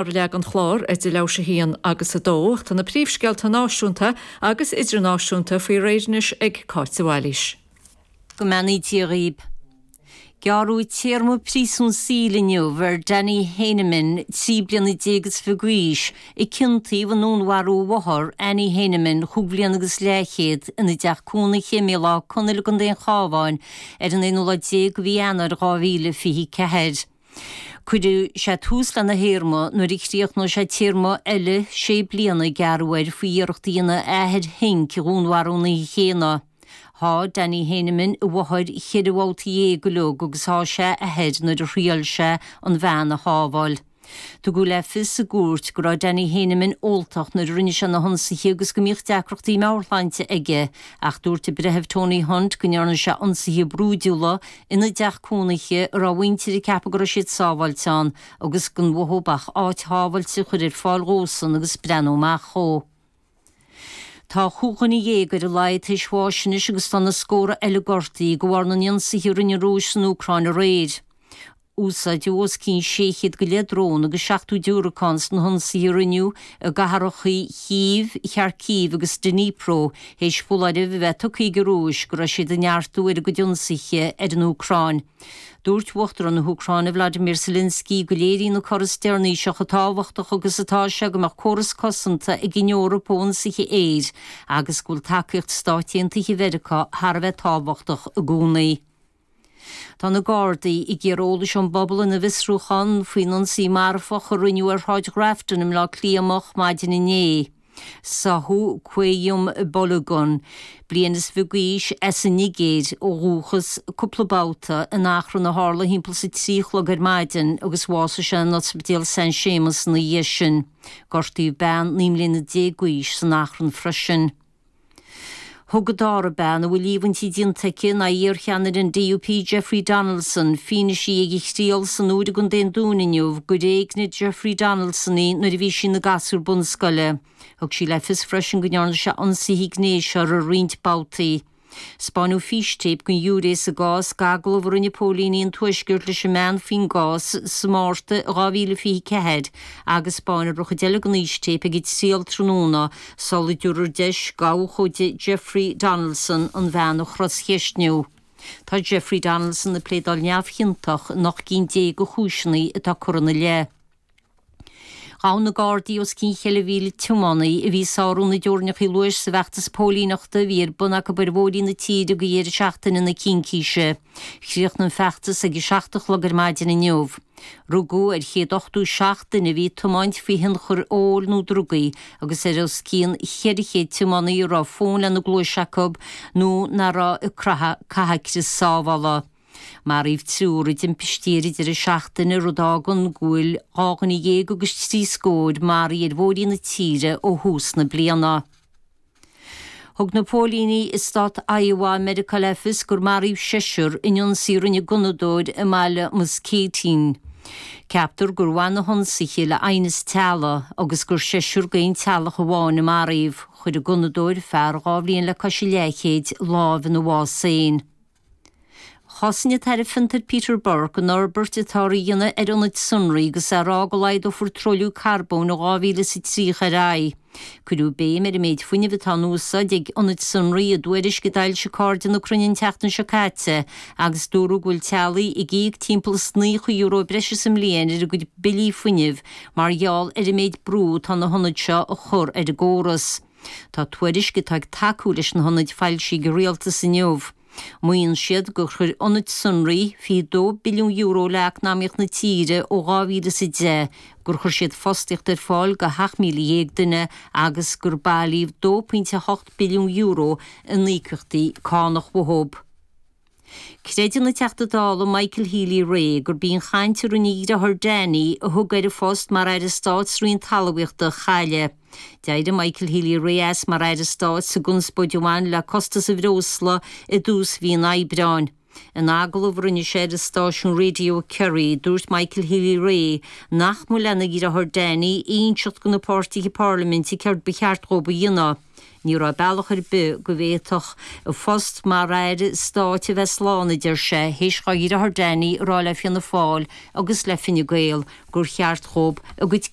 ar leath den chlár idir leath théis a 1 agus a 2 ach tá na príomhscéalta náisiúnta agus idirnáisiúnta faoi réir anois ag Cáit de Bhailís. Go mbeannaí Dia dhaoib. Gearradh téarma príosúin saoil inniu ar Danny Heyneman, trí bliana déag is fiche d'aois, a ciontaíodh i ndúnmharú a mháthar, Annie Heyneman, chúig bhliana agus leathchéad, ina dteach cónaithe i mBéal Átha Conaill i gContae an Chábháin ar an aonú lá déag de mhí Eanáir 2024. Cuirfidh sé tús lena théarma nuair a chríochnóidh sé téarma eile sé bliana a gearradh air faoi iarracht a dhéanamh a athair Henk a dhúnmharú an oíche chéanna. Sháigh Danny Heyneman a mháthair cheithre bhabhta dhéag uilig agus sháigh sé a athair nuair a thriail sé an bhean a shábháil. Tugadh le fios sa gcúirt go raibh Danny Heyneman óltach nuair a rinne sé na hionsaithe agus go mbíodh deacrachtaí meabhairshláinte aige ach dúirt an Breitheamh Tony Hunt go ndearna sé ionsaithe brúidiúla ina dteach cónaithe a raibh a mhuintir ag ceapadh go raibh siad sábháilte ann agus gan uathub ach áit shábháilte a chur ar fáil dhósan agus breathnú amach dhó. Tá chúig dhuine dhéag ar a laghad théis bháis anois agus tá na scórtha eile gortaithe de bharr na n-ionsaithe a rinne an Rúis san Úcráin aréir. Úsáideadh os cionn sé chéad go leith drón agus seachtó diúracán sna hionsaithe a rinneadh i gcathracha Chív, Kharkiv agus Dnipro, théis foláireamh a bheith tugtha ag an Rúis go raibh siad ag neartú ar a gcuid ionsaithe ar an Úcráin, dúirt Uachtarán na hÚcráine Vladimir Zelenskiy go léiríonn an cor is deireanaí seo chomh tábhachtach agus atá sé go mbeadh córas cosanta ag an Eoraip ó ionsaithe aeir agus go bhfuil tacaíocht Stáit Aontaithe Mheiriceá thar a bheith tábhachtach i gcónaí. Tá na Gardaí ag iarraidh eolais ón bpobal ina bhfiosrúchán faoin ionsaí marfach a rinneadh ar Shráid Ghrafton i mBleá Cliath moch maidin inné. Sáthadh Qayyum Balogun, bliain is fiche d'aois, as an Nigéir ó dhúchas, cúpla babhta in achrann a tharla thimpeall is a trí a chlog ar maidin agus bhásaigh sé in Ospidéal San Séamas ina dhiaidh sin. Gortaíodh bean naoi mbliana déag d'aois san achrann freisin. Thug an dara bean a bhfuil líomhaintí déanta aici in aghaidh iarcheannaire an DUP Jeffrey Donaldson, fianaise ag a thriail san Iúr i gContae an Dúin inniu gur éignigh Jeffrey Donaldson í nuair a bhí sí ina gasúr bunscoile. Thug sí le fios freisin go ndearna sé ionsaithe gnéis uirthi roinnt babhtaí. Spáineadh fístéip don ghiúiré sa gcás d'agallamh a rinne póilíní an Tuaiscirt leis an mbean faoin gcás sa Márta 2024 agus spáinfear an chuid eile den fhístéip ag an triail tráthnóna sula dtabharfar deis d'abhcóide Jeffrey Donaldson an bhean a chroscheistniú. Tá Jeffrey Donaldson ag pléadáil neamhchiontach in ocht gcinn déag de chúiseanna atá curtha ina leith. Ghabh na Gardaí os cionn cheithre mhíle tiománaí a bhí ag sárú na dteorainneacha luais sa bhfeachtas póilíneachta a bhí ar bun acu ar bhóithrí na tíre ag deireadh seachtaine na Cincíse. Chríochnaigh an feachtas ag a seacht a chlog ar maidin inniu. Rugadh ar chéad ochtó is seacht duine a bhí ag tiomáint faoi thionchar óil nó drugaí agus ar os cionn cheithre chéad tiománaí a raibh fón lena gcluais acu nó nach raibh ag caitheamh crios sábhála. Maraíodh triúr i dtimpistí ar an deireadh seachtaine, rud a fhágann go bhfuil dhá dhuine dhéag agus trí scór maraithe ar bhóithrí na tíre ó thús na bliana. Thug na póilíní i stát Iowa i Meiriceá le fios gur maraíodh seisear in ionsaí a rinne gunnadóir i mbaile Muscatine. Ceaptar gur bhain na hionsaithe le haighneas teaghlaigh agus gur seisear d'aon teaghlach amháin a maraíodh. Chuir an gunnadóir, fear dhá bhliain le cois a leathchéid, lámh ina bhás féin. Chosain an tAire Fiontar Peter Burke an fhorbairt atáthar a dhéanamh ar ionaid sonraí agus é ag rá go laghdófar truailliú carbóin ó 2000 is 30 ar aghaidh. Cuireadh béim ar an méid fuinnimh atá in úsáid ag ionaid sonraí i dtuairisc a d'fhoilsigh Cairde na Cruinne an tseachtain seo caite agus dúradh go bhfuil teaghlaigh ag íoc timpeall is €90 breise sa mbliain ar a gcuid billí fuinnimh mar gheall ar an méid brú atá na hionaid seo a chur ar an gcóras. Tá tuairisc atá ag tacú leis na hionaid foilsithe ag an rialtas inniu. Maíonn siad gur chuir ionaid sonraí €22 billiún le eacnamaíocht na tíre ó 2010, gur chuir siad fostaíocht ar fáil do 17,000 duine agus gur bailíodh €2.8 billiún in íocaíochtaí cánach. uathu. Creideann an Teachta Dála Michael Healy-Rae gurb í an chaint a rinne a dhriotháir Danny, a thug air a phost mar Aire Stáit sa Roinn Talamhaíochta, a chailleadh. D'éirigh Michael Healy-Rae as mar Aire Stáit sa gconspóid a bhain le costas an bhreosla i dtús mhí an Aibreáin. In agallamh a rinne sé ar an stáisiún Radio Kerry, dúirt Michael Healy-Rae nach mba lena dhriotháir Danny a inseacht do na páirtithe parlaiminte céard ba cheart dhóibh a dhéanamh. Ní raibh bealach ar bith go bhféadfadh a phost mar aire stáit a bheith slán, a deir sé, théis dhá dhriotháir Danny a rá le Fianna Fáil agus le Fine Gael gur cheart dhób a gcuid